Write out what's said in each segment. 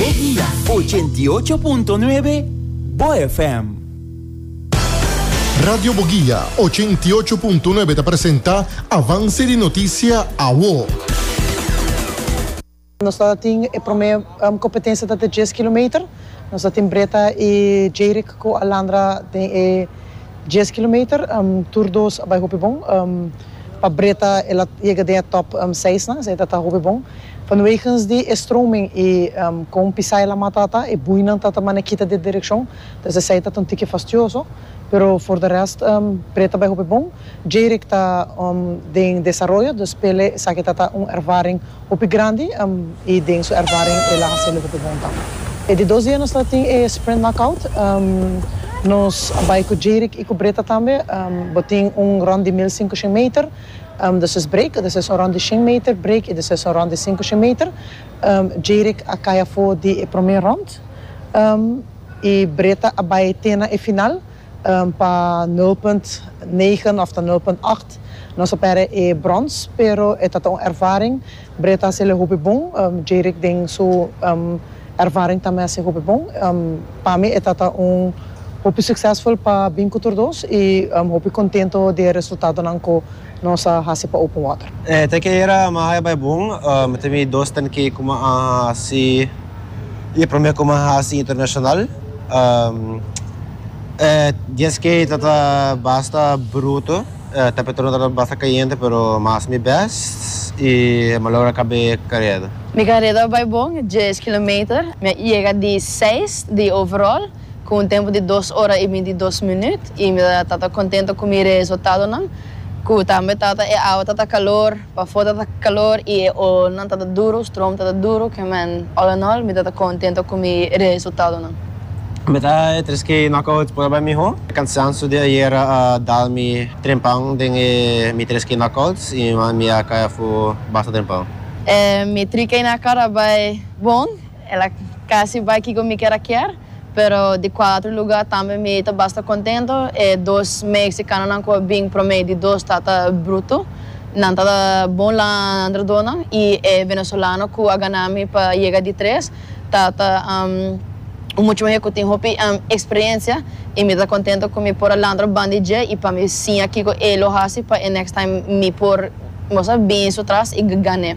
Eguia ochenta i ocho punto nuebe, bo FM. Radio Boguia ochenta i ocho punto nuebe ta presenta Avance di Noticia Awo. Nos ta tin e prome competencia ta den dies kilometer. Nos ta tin Breta y Jayrick cu Alandra den e Dies kilometer, tur dos a bai hopi bon. Pa Breda el a yega den e top seisnan, esei ta ta hopi bon. Vanwegens di e stroming i kon pisae lamat ta ta, e buinan ta ta mane kita di e direkshon, dus esei ta ta un tiki fastioso. Pero for de rest Breda a bai hopi bon. Jayrick ta den desaroyo, dus p'e esaki ta ta un ervaring. Hopi grandi y den su ervaring el a hase lo hopi bon ta. E di dos dia nos ta tin e Sprint Knockout, nos a bay cu Jerick y cu Brita tambe, bo tin un rond di mil singushen meter, despues break, despues un rond di shen meter, break y despues un rond di singushen meter. Jerick a cay afo di e prome rond y Brita a bay te na e final. Pa nul punt negen of ta nul punt acht nos a pèrdè e brons, pero e ta ta un ervaring. Breda ta hasiel e hopi bon, Jerick den su ervaring tambe a hasi hopi bon. Pa mi e ta ta un hopi suksesful pa bin ku tur dos i hopi kontento di e resultadonan ku Nos a hasi pa open water. E teken ayer a mi a haya bai bon. Mi tin mi dos ten ke ku mi a hasi i e prome ku mi a hasi internashonal. E dies ke ta ta basta bruto, e temperatuur no tabata basta kayente pero mi a hasi mi bèst i mi a logra kab'é kareda. Mi kareda a bai bon, dies kilometer. Mi a yega di seis di overall. Ku un tempu di dos ora i binti dos minüt, i mi ta tata kontentu ku mi reesultadonan, ku tambe tata e awa ta ta kalor, pafó ta ta kalor i e olnan ta ta duru, strom ta ta duru, kemen all in all mi ta ta kontentu ku mi reesultadonan. Mi ta e tres ke knockout prueba e mihó. E kansansu di ayera a dal mi trempan den e mi tres ke knockouts i mi a kai afu basta trempan. E mi tri ke na kara bai bon. El a casi bay kico mi kier a kier, pero di cuatro lugar tambe mi ta basta contento. E dos Mexicanonan cu a bin prome di dos ta ta bruto. Nan ta ta bon landrodonan y e Venezolano cu a gana mi pa yega di tres ta ta un mucho muher cu tin hopi experiencia y mi ta contento cu mi por a landro bandi dje y pa mi siña kico e lo haci pa e next time mi por, bo sa, bin su tras y gan'e.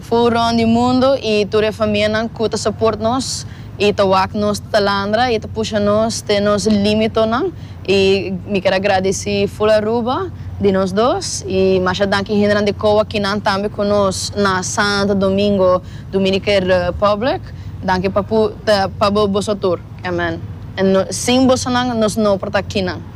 Fu rond di mundo i tur e famianan ku ta soport nos i ta wak nos talandra i ta pusha nos te nos limitonan i mi kier a gradisi ful Aruba di nos dos i masha danki hendenan di Kowa kinan tambe ku nos na Santo Domingo Dominican Republic danki pa bo boso tur amen sin bosonan nos no por ta kinan.